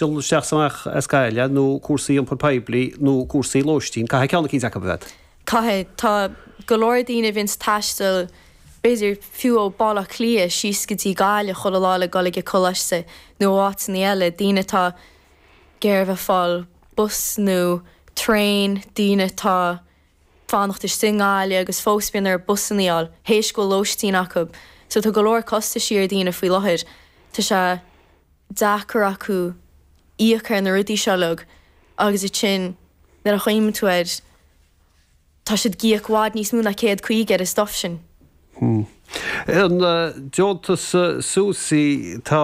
dhul isteach 's amach as Gaillimh nó cúrsaí iompar poiblí nó cúrsaí lóistín, caithfidh ceann eicínt acu a bheith. Caithfidh. Tá go leor daoine a bhíonns ag taisteal b'fhéidir fiú ó Baile Átha Cliath síos go dtí Gaillimh chuile lá le dhul ag a coláiste nó áiteannaí eile, daoine atá ag iarraidh a bheith ag fáil bus nó traein, daoine atá ag fanacht istigh i nGaillimh agus fós bíonn orthu busannaí a fháil théis go bhfuil lóistín acu. So tá go leor costaisí ar daoine faoi láthair. Tá sé. deacair orthu íoc ar na rudaí seo uilig agus iad sin, nuair a chuimhníonn tú air, tá siad ag íoc i bhfad níos mó ná céad caoga ar an stuff sin. An deontas Susi, tá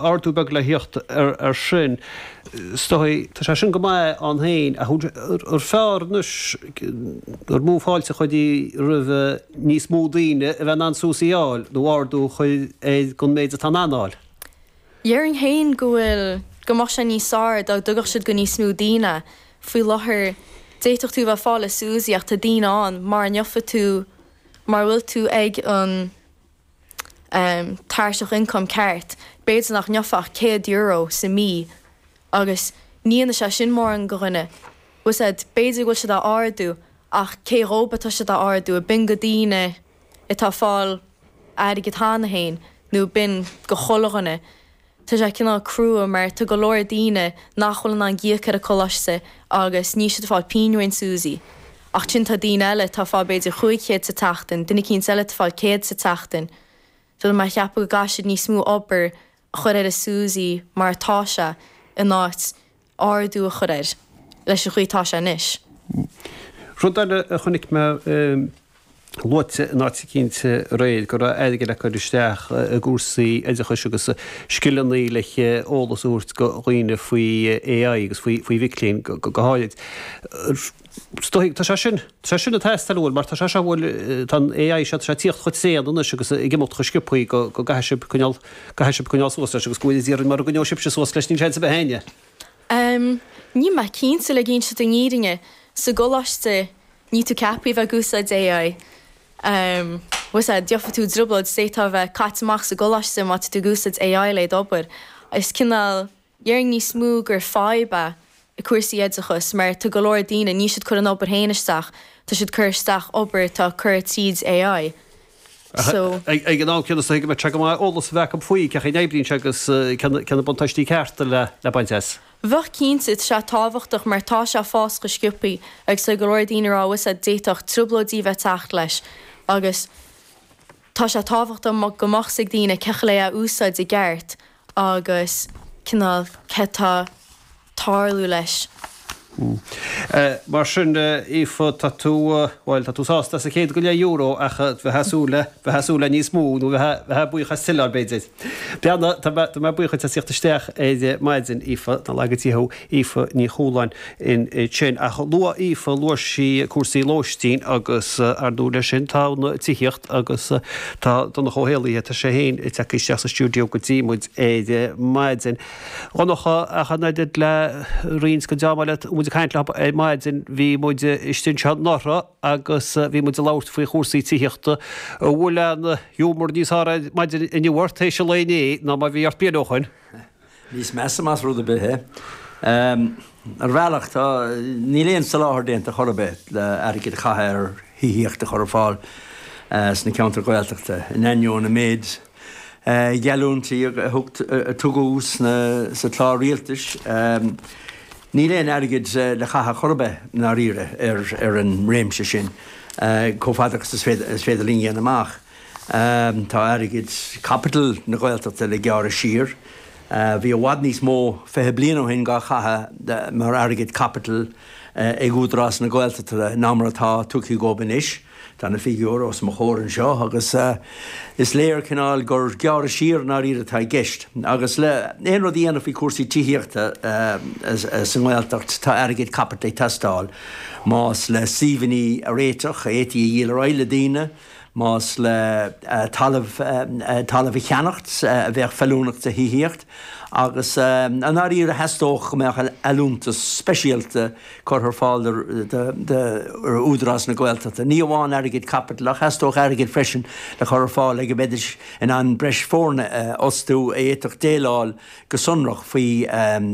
ardú beag le thíocht ar sin is dóigh. Tá sé sin go maith ann héin ach an fearr anois, an mó fáilte a chuirfí roimh níos mó daoine a bheith in ann Susi a fháil nó ardú a chur ar an méid atá siad in ann a fháil? Dhéarfainn féin go bhfuil, go mbeadh sé níos fearr dá dtugadh siad é go níos mó daoine. Faoi láthair, d'fhéadfadh tú a bheith ag fáil Susi ach tá daoine ann, mara ngeofaidh tú, mara bhfuil tú ag an em, tairseach ioncaim ceart, b'fhéidir nach ngeofá ach céad euro sa mí agus ní dhéanfaidh sé sin mórán go dhuine. Bhuel sea, b'fhéidir go bhfuil siad á ardú ach cé dhóibh atá siad á ardú, An mbíonn go daoine atá ag fáil airgead cheana féin nó an mbíonn go chuile dhuine, tá sé cineál crua mar tá go leor daoine nach bhfuil in ann íoc ar an gcoláiste agus níl siad ag fáil pingin ón Susi. Ach ansin tá daoine eile atá ag fáil b'fhéidir chúig chéad sa tseachtain, duine eicínt eile ag fáil céad sa tseachtain. Bhuel tá mé ag ceapadh go gcaithfidh siad níos mó obair a chur ar an Susi mar atá sé in áit ardú a chur air. Leis an gcaoi atá sé anois. Rud eile a chonaic mé luaite in áit eicínt aréir, go raibh airgead le cur isteach i gcúrsaí oideachais agus scileanna le eolas a thabhairt go dhaoine faoi AI agus go mhic léinn go háirid. Is dóigh. Tá sé sin, tá sé sin ag teastáil bhuel mar tá sé seo bhfuil, tá an AI seo, tá sé ag tíocht chomh tréan anois agus ag imeacht chomh sciobthaí go, go gcaithfidh sibh coinneáil, gcaithfidh sibh coinneáil suas leis agus go bhfuil dáiríre mara gcoinneoidh sibhse suas leis níl seans ar bith ag éinne. Em, níl mé cinnte le insint an fhírinne, sa gcoláiste níl tú ceaptha a bheith ag úsáid AI. Em, más ea, gheofaidh tú i dtrioblóid, d'fhéadfá a bheith caite amach as an gcoláiste má tá tú ag úsáid AI le d'obair. Is cineál. Déarfainn níos mó gur fadhb é i gcúrsaí oideachas mar tá go leor daoine, níl siad ag cur an obair féin isteach, tá siad ag cur isteach obair atá curtha tríd AI. So. Ag an am céanna is dóigh go mbeadh sé go maith eolas a bheith acu faoi cén chaoi a n-oibríonn sé agus cé na buntáistí cearta le le baint as. Bheadh cinnte, tá sé tábhachtach mar tá sé ag fás chomh sciobthaí agus tá go leor daoine ag rá go bhfuil sé d'fhéadfadh trioblóidí a bheith ag teacht leis agus tá sé tábhachtach go mbeadh 's ag daoine cén chaoi lena úsáid i gceart agus cineál cad tá tarlú leis. Hm. Mar sin, Aoife, tá tú, bhuel, tá tú sásta as an gcéad go leith euro ach bheifeá ag súil le, bheifeá ag súil le níos mó nó bheifeá buíoch as tuilleadh dá mbeadh. Bheadh, tá mé buíoch duit as ucht a theacht isteach ar maidin, Aoife, nár laga Dia thú. Aoife Ní Chualáin í sin. Ach luaigh Aoife, luaigh sí cúrsaí lóistín agus ar ndóigh leis sin tá an tithíocht agus tá Donncha Ó hÉallaithe, tá sé féin ag teacht isteach sa stiúideo go dtí muid ar maidin. A Dhonncha, ach an oiread le roinnt go dtáimid ag caint leo ar maidin, bhí muid istigh anseo anuraidh agus bhí muid ag labhairt faoi chúrsaí tithíochta. An bhfuil an giúmar níos fearr ar maidin inniu ort, théis an lae inné, ná mar bhí ort bliain ó shin? Níos measa más rud ar bith é. Ar bhealach, tá, níl aon soláthar déanta chor ar bith le airgead a chaitheamh ar thithíocht a chur ar fáil sna ceantair Ghaeltachta, in ainneoin an méid geallúintí a tugadh sa chlár rialtais. Níl aon airgead le caitheamh chor ar bith, i ndáiríre, ar an réimse sin, chomh fada agus is féidir linn a dhéanamh amach. Tá airgead caipitil na Gaeltachta le gearradh siar. Bhí i bhfad níos mó, fiche bliain ó shin, dhá chaitheamh mar airgead caipitil ag Údarás na Gaeltachta ná mar atá tugtha dhób anois. Tá na figiúirí os mo chomhair anseo agus is léir cineál gur gearradh siar i ndáiríre atá i gceist. Agus le aon rud a dhéanamh faoi chúrsaí tithíochta sa nGaeltacht tá airgead caipitil ag teastáil. Más le suíomhannaí a réiteach a fhéadfaí a dhíol ar aghaidh le daoine, Más le talamh, talamh a cheannacht a bheadh feiliúnach do thithíocht, agus i ndáiríre theastódh go mbeadh allúntas speisialta curtha ar fáil d'Údarás na Gaeltachta. Ní amháin airgead caipitil ach theastódh airgead freisin le cur ar fáil go mbeidís in ann breis foirne a fhostú a fhéadfadh déileáil go sonrach faoi